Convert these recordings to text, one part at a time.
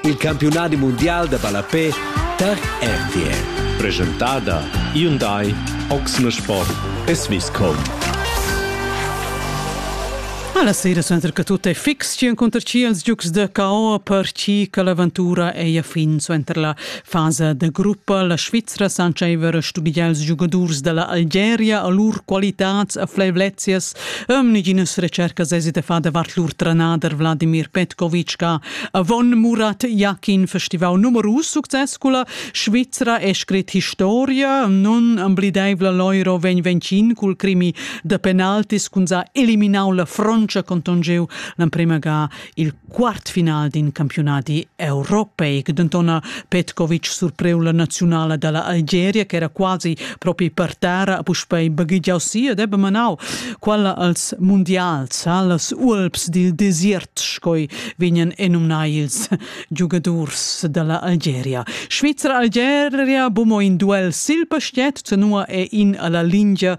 Il campiunadi mundial da ballapè tar RTL. Presentada Hyundai Oxne Sport e Swisscom. Alla sera senza che tutto è fix, ci incontra ci els giucs de KO per ci che l'avventura è a fin suenter la fase de gruppa. La Svizzera sancieva studiar els giocadors della Algeria a lur qualitats e fleivlezias Um neginas recercas esi da far davart lur tranader Vladimir Petkovic che avon Murat Yakin festival numerus success culla Svizra è scrit historia nun amblideivla Loiro vegn vencin cul crimi da penaltis cun sa eliminau la froncia contongeu l'emprema ga il quartfinal d'in campiunadi europeic. Denton Petkovic surpreu la naziunala dalla Algeria che era quasi propi per terra puspei baghigiau si ed ebbe manau quella als mundials, allas Ualps dil desert scoi vegnan enumnai ils giugadurs dalla Algeria. Svizra Algeria bumo in duel sil pastiet, tenua e in alla lingia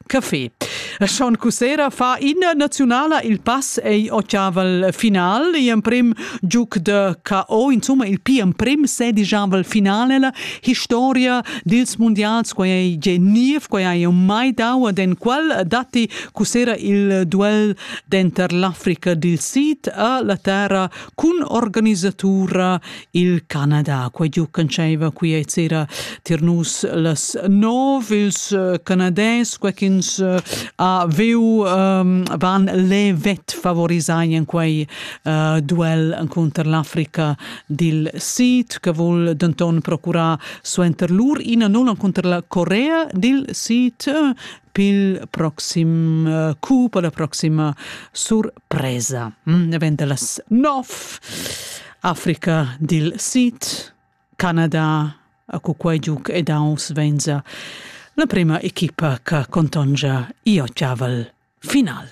Café. Sean Cussera fa in nazionala il pass ei ottavel final e emprim giuc de KO insomma il pi emprim sedijavel finale la historia dils mondials quei ei genniev quei ei mai dau den qual datti Cussera il duel denter l'Africa dil Sid e la terra cun organisatura Il Canada, quei giu canscheva qui e sera tier nus las nov ils uh, Canades, quei ch'ins uh, ha veu um, van le vet favorisai in quei uh, duel contr l'Africa dil Sid, che vul denton procurar suenter lur ina nulla contr la Corea dil Sid uh, pil proxim uh, coup, la proxima surpresa. presa davent da las nov Africa dil Sid, Canada, a cu quei giug ed aunc venza la prima equipa che contongia io chaval final.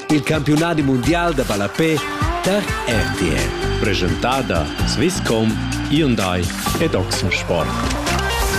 Il campionat mondial da ballapé tar RTL. Presentada Swisscom, Hyundai ed Oxensport.